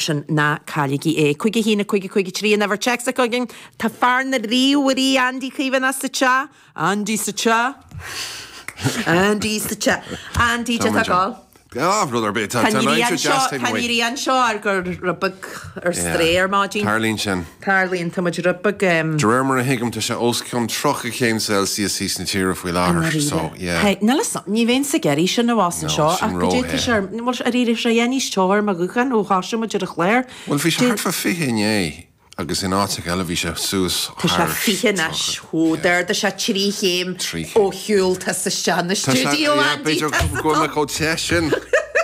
sin, ná cailligí é. Cúig a hAon, a Cúig, a Cúig a Trí, an uimhir téacs atá againn. Tá fear na ríomhairí, Andy Cavanagh, sa teach. Andy sa teach. Andy sa teach. Andy, cad é atá ag dul? Gan rud ar bith. Tá an Rí anseo ar Go Róbach ar strae ar maidin. Tarlaíonn sin. Tarlaíonn timpistí. De réir mar a thuigim, tá sé os cionn 30 céim Celsius theas na tíre faoi I láthair, so ndáiríre. yeah. Hey, níl 'fhios a'm, ní bheinn sa gheimhreadh sin a bhfásann No, seo sin ach go dtéann sé ró-the. ar, bhuel, d'éirigh sé é níos teo ar mo ghuthán ó thosaigh muid ar an chláir. Bhuel, bhí sé Dé. thart fá 20 inné agus in áiteacha eile bhí sé suas Tá sé thar 20 anois. 30, Ó, yeah. d'ardaigh sé trí chéim Trí ó chéim. shiúl tusa isteach sa Tá sé, stiúideo, yeah, Andy. b'fhéidir Tá go go bhfuil mé chomh te sin.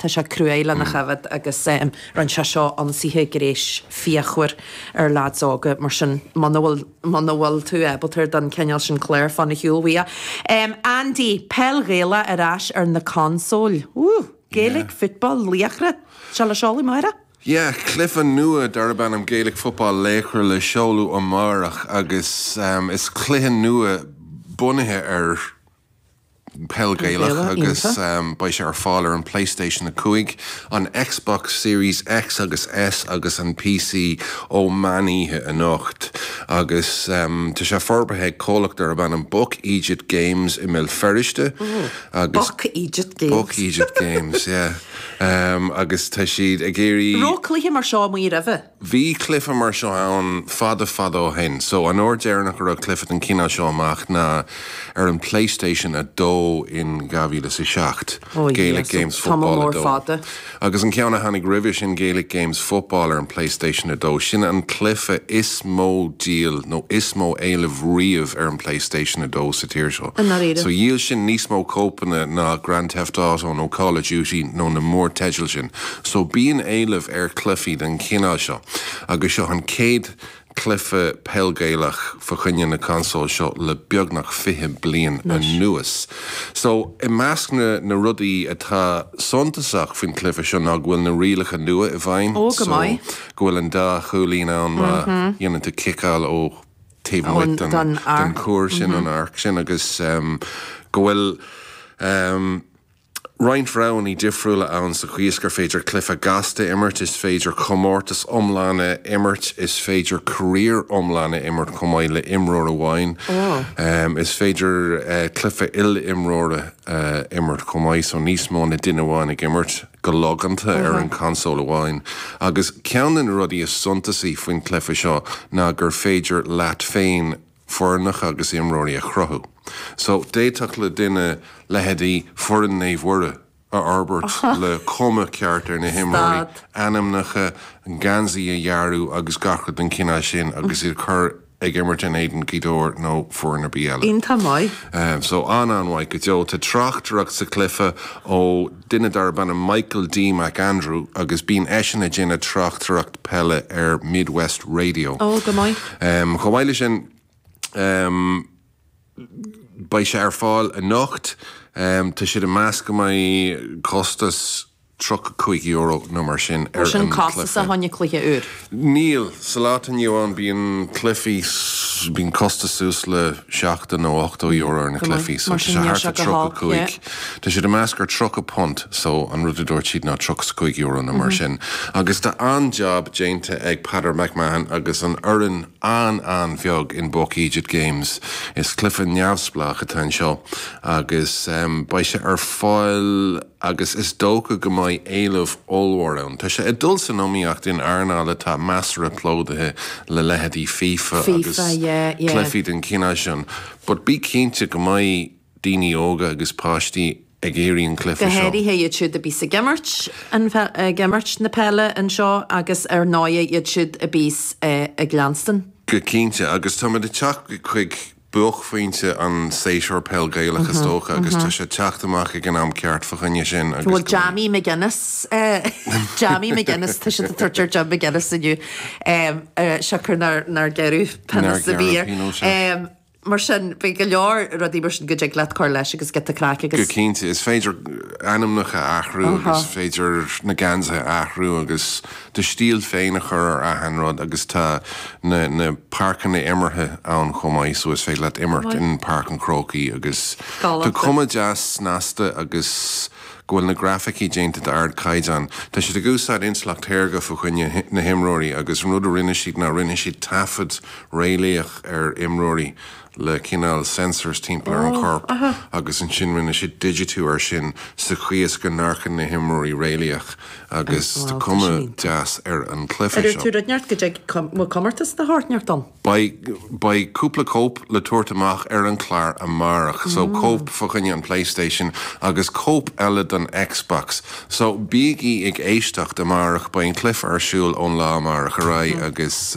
Tá sé cruaidh lena choimhéad agus rinne sé seó ionsaithe gréis fíochmhar ar lads óga mar sin muna bhfuil muna bhfuil tú ábaltar don cineál sin cláir fan ar shiúl uaidh. Andy, Peil Ghaelach ar ais ar na consóil. Woo! Gaelic Football Laochra seo le seoladh amáireach. Yeah, cluife nua darb ainm Gaelic Football Laochra le seoladh amáireach agus is cluiche nua bunaithe ar Peil Ghaelach agus beidh sé ar fáil ar an Playstation 5, an Xbox Series X agus S agus an PC ó mheánoíche anocht agus tá sé forbartha ag comhlacht darb ainm Buck Eejit Games i mBéal Feirste agus Buck Eejit Games. Buck Eejit Games, yeah. Agus tá siad ag iarraidh. Raibh cluiche mar seo amuigh roimhe? Bhí cluife mar seo ann fada fada ó shin, so an uair deireanach a raibh cluife den cineál seo amach ná ar an PlayStation 2 in 2007, Oh yeah, Gaelic so Games tamall Football mór 2. fada. Agus an ceann a tháinig roimhe sin, Gaelic Games Football ar an PlayStation 2, sin an cluife is mó díol nó is mó éileamh riamh ar an PlayStation 2 sa tír seo. I ndáiríre. So dhíol sin níos mó cóipeanna ná Grand Theft Auto nó Call of Duty nó na mórteidil sin. So bíonn éileamh ar chluichí den chineál seo agus seo an chéad chluiche Peil Ghaelach fá choinne na consóil seo le beagnach fiche bliain anuas. So i measc na rudaí atá suntasach faoin chluiche seo ná go bhfuil na rialacha nua i bhfeidhm so go bhfuil an dá chúilín ann má dhéanann tú ciceáil ó taobh amuigh den chuar sin, an arc sin, agus go bhfuil. roinnt roghanna difriúla ann sa chaoi is gur féidir cluife gasta a imirt, is féidir comórtas iomlán a imirt, is féidir career iomlán a imirt chomh maith le imreoir amháin, is féidir cluife il-imreora a imirt chomh maith, so níos mó ná duine amháin ag imirt go logánta ar an console amháin. Agus ceann de na rudaí is suntasaí faoin cluife seo ná gur féidir leat féin, foirneacha agus imreoirí a chruthú. So, d'fhéadfadh le duine leithéidí foireann Naomh Mhuire a fhorbairt le cuma ceart ar na himreoirí, ainmneacha, geansaí a dhearadh agus gach rud den chineál sin agus iad a chur ag imirt in éadan Ghaoth Dobhair nó foireann ar bith eile. Iontach maith. So, an-an-mhaith go deo. Tá tráchtaireacht sa chluiche ó duine darb ainm Michael D. McAndrew agus bíonn eisean ag déanamh tráchtaireacht peile ar Midwest Radio. Ó, go maith. Chomh maith leis sin, beidh sé ar fáil anocht. Tá siad ag meas go mbeidh costas €35 nó mar sin ar an cluiche. Níl sin costasach fa choinne cluiche úr. Níl. Sa lá atá inniu ann, bíonn cluichí, bíonn costas suas le seachtó nó ochtó euro ar na cluichí, so tá sé thart ar tríocha cúig, tá siad ag meas gur tríocha punt, so an rud a dúirt siad ná tríocha is cúig euro nó mar sin agus tá an-jab déanta ag Peadar McMahon agus an fhoireann an-an-bheag in Buck Eejit Games. Is cluiche neamhspleách atá anseo agus beidh sé ar fáil. agus is dócha go mbeidh éileamh ollmhór ann. Tá sé ag dul san iomaíocht in earnáil atá measartha plódaithe le leithéidí FIFA agus FIFA, yeah, yeah. cluichí den chineál sin but bí cinnte go mbeidh daoine óga agus páistí ag iarraidh an cluiche Go seo. háirithe iad siúd a bíos ag imirt an, ag imirt na peile anseo agus ar ndóigh iad siúd a bíos ag leanstan. Go cinnte, agus táimid ag teacht chuig buaicphointe an séasúr peil Gaelach is dócha agus tá sé ag teacht amach ag an am ceart fa choinne sin agus go bhfuil Jammy McGuinness Jammy McGuinness atá siad ag tabhairt ar Jim McGuinness inniu siocair nár gearradh pionós ar bith air mar sin beidh go leor rudaí mar sin go dtig leat a chur leis agus giota craic agus go cinnte is féidir ainmneacha a athrú is féidir na geansaithe a athrú agus do stíl féin a chur ar achan rud agus tá na páirceanna imeartha ann chomh maith so is féidir leat imirt in Páirc an Chrócaigh agus tá cuma deas snasta agus go bhfuil na grafaicí déanta d'ard caighdeán. Tá siad ag úsáid intleacht shaorga fa choinne na himreoirí agus an rud a rinne siad ná rinne siad taifead réalaíoch ar imreoirí le cineál sensors timpeall ar an chorp agus ansin rinne siad digitiú air sin sa chaoi is go n-amharcann na himreoirí réalaíoch agus tá cuma deas ar an cluiche seo. Beidh cúpla cóip le tabhairt amach ar an clár amárach so cóip fa choinne an Playstation agus cóip eile don Xbox so bígí ag éisteacht amárach beidh an cluiche ar siúl ón lá amárach ar aghaidh agus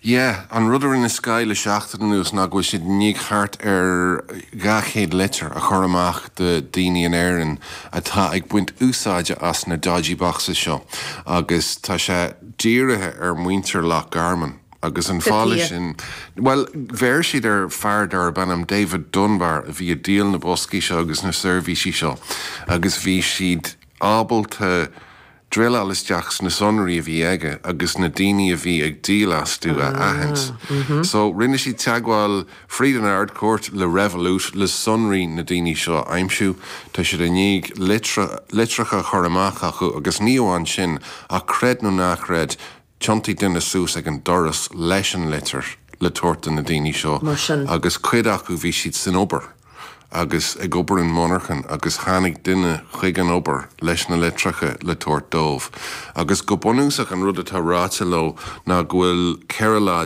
Yeah, an rud a rinne Sky le seachtain anuas ná go bhfuil siad i ndiaidh thart ar 200 litir a chur amach do dhaoine in Éirinn atá ag baint úsáide as na dodgy boxes seo agus tá sé dírithe ar mhuintir Loch Garman agus an fáth leis sin, bhuel, bheir siad ar fhear darb ainm David Dunbar a bhí ag díol na boscaí seo agus na seirbhísí seo agus bhí siad ábalta, druileáil isteach sna sonraí a bhí aige agus na daoine a bhí ag díol astu a aithint. So, rinne siad teagmháil fríd an Ard-Chúirt le Revolut le sonraí na daoine seo a aimsiú. Tá siad i ndiaidh litreacha a chur amach chucu agus ní amháin sin ach creid nó ná creid, Thiontaigh duine suas ag an doras leis an litir le tabhairt do na daoine seo Mar sin. agus cuid acu bhí siad san obair agus ag obair i monarchan agus tháinig duine chuig an obair leis na litreacha le tabhairt dóibh agus go bunúsach an rud atá ráite leo ná go bhfuil 14 lá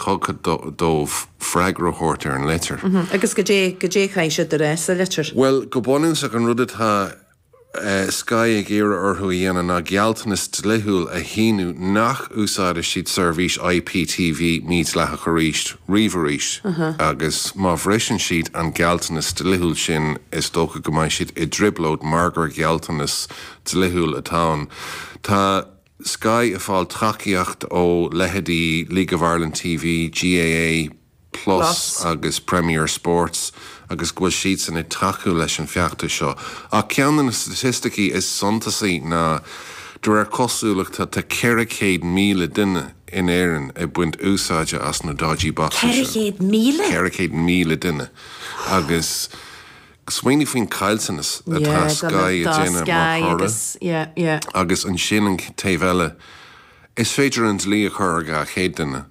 tugtha dóibh freagra a thabhairt ar an litir. Agus goidé, goidé a chaithfidh siad a rá sa litir? Bhuel, go bunúsach an rud atá. Sky ag iarraidh orthu a dhéanamh ná gealltanas dlíthiúil a shíniú nach n-úsáidfidh siad seirbhís IPTV mhídhleathach arís riamh arís agus má bhriseann siad an gealltanas dlíthiúil sin is dócha go mbeidh siad i dtrioblóid mar gur gealltanas dlíthiúil atá ann. Tá Sky ag fáil tacaíocht ó leithéidí League of Ireland TV, GAA, Plus agus Premier Sports agus go bhfuil siadsan ag tacú leis an bhfeachtas seo. Ach ceann de na staitisticí is suntasaí ná, de réir cosúlachta, tá 400,000 duine in Éirinn ag baint úsáide as na dodgy boxes seo. 400,000? 400,000 duine. Agus smaoinigh faoin caillteanas atá Sky ag déanamh mar thoradh. Agus ansin an taobh eile, is féidir an dlí a chur ar 200 duine.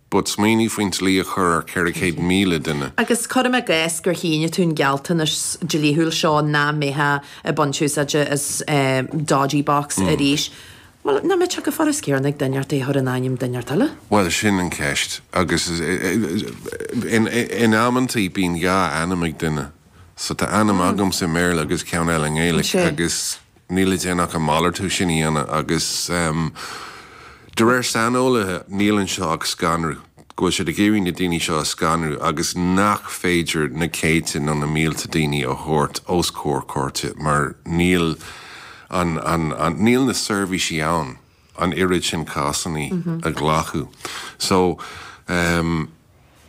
But smaoinigh faoin dlí a chur ar 400,000 duine. Agus cuirim i gcás gur shínigh tú an gealltanas dlíthiúil seo nach mbeifeá ag baint úsáide as dodgy box arís, bhuel, nach mbeadh sé go furasta céanna ag duine é a chur in ainm duine éigin eile? Bhuel, sin an cheist. Agus in amanntaí bíonn dhá ainm ag duine. So tá ainm agamsa i mBéarla agus ceann eile i nGaeilge agus Níl le déanamh ach an malartú sin a dhéanamh agus, de réir saineolaithe, níl anseo ach scanrú, go bhfuil siad ag iarraidh na daoine seo a scanrú agus nach féidir na céadta nó na mílte daoine a thabhairt os comhair cúirte mar níl an, níl na seirbhísí ann an oiread sin cásanna a ghlacadh. So,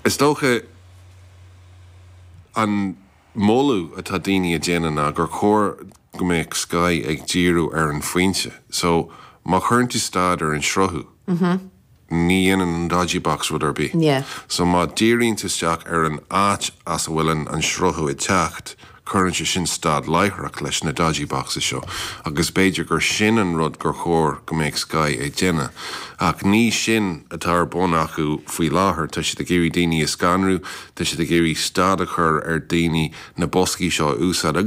is dócha an. moladh atá daoine ag déanamh ná gur chóir go mbeadh Sky ag díriú ar an phointe. So, má chuireann tú stad ar an sruthú, ní dhéanann an dodgy box rud ar bith. So, má díríonn tú isteach ar an áit as a bhfuil an sruthú ag teacht, cuireann sé sin stad láithreach leis na dodgy boxes seo agus b'fhéidir gur sin an rud gur chóir go mbeadh Sky ag déanamh. Ach ní sin atá ar bun acu faoi láthair. Tá siad ag iarraidh daoine a scanrú. Tá siad ag iarraidh stad a chur ar dhaoine na boscaí seo a úsáid agus.